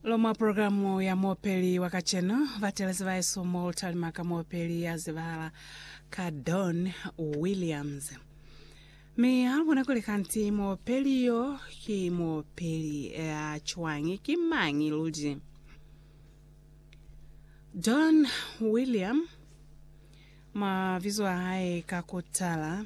Lomwa programu ya mopeli wa kaceno batelezi baesu mo lutalima ka mopeli ya zibahala ka Don Williams. Mi ha lu bona kuli kanti mopeli yo ki mopeli ya cwañi, ki mañi luli? Don William mabizo a hae ka kutala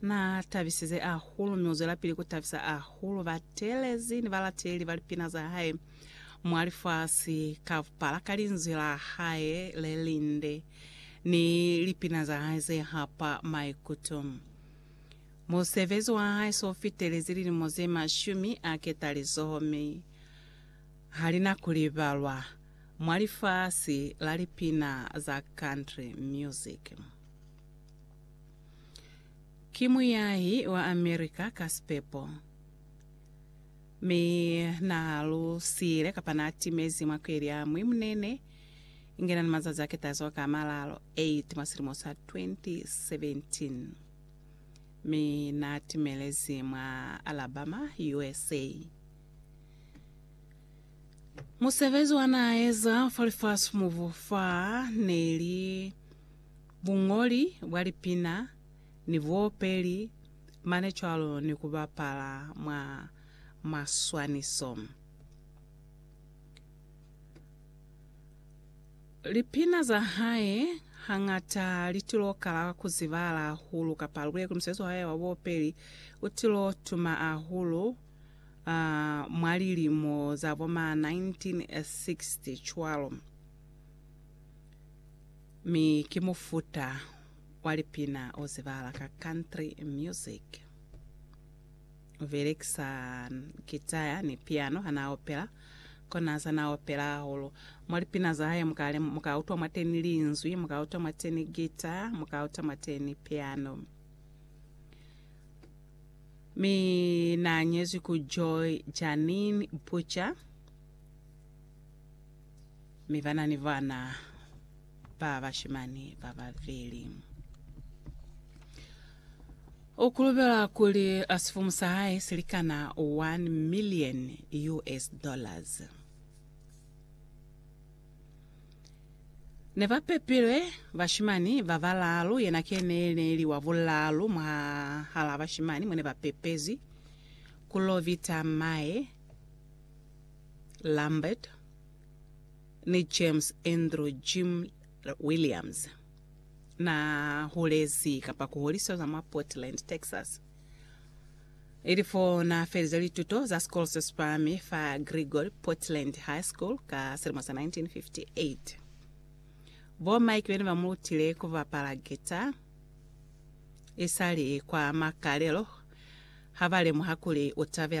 Na tabisize ahulu, mi uzwelapili kutabisa ahulu batelezi ni balateli ba lipina za hae mwa lifasi ka bupala ka linzwi la hae le linde ni lipina za hae ze hapa maikuto. Musebezi wa hae so fitelezi lilimo ze mashumi a ketalizoho mi ha li na ku libalwa mwa lifasi la lipina za country music. Ki muyahi wa America ka sipepo, mi na lusile kapa na timezi mwa kweli ya Mwimunene, inge na ni mazazi a ketazo ka malalo 8 mwa silimo sa 2017, mi na timelezi mwa Alabama, USA. Musebezi wa na eza fa lifasi mubu fa ne li Buñoli bwa lipina ni buopeli mane cwalo ni ku bapala mwa maswaniso. Lipina za hae hañata li tilo kala ku zibahala hahulu kapa lubule kuli musebezi wa hae wa buopeli u tilo tuma hahulu mwa lilimo za bo ma 1960 cwalo. Mi ki mufuta wa lipina o zibahala ka country music. U belekisa gitaya ni piano ha n'a opela. Ko n'a za n'a opela hahulu. Mwa lipina za hae mu ka lem-, mu ka utwa mwateni linzwi, mu ka utwa mwateni gita, mu ka utwa mwateni piano. Mi n'a nyezwi ku Joy Janine Butcher. Mi ba na ni bana ba bashimani ba babeli. U kulubela kuli a sifumu sa hae si likana 1 million US dollars. Ne ba pepilwe bashimani ba balaalu, yena ke ne ne li wa bulaalu mwahal'a bashimani mo ne ba pepezwi, Kulovita Mae Lambert. ni James Andrew Jim Williams na hulezi kapa ku holiswa za mwa Portland, Texas. Ili fo na felize lituto za sikolo se sipahami fa Gregory Portland High School ka silimo sa 1958. Bo Mike bene ba mu lutile ku bapala guitar isali kwa makalelo ha ba lemuha kuli u tabela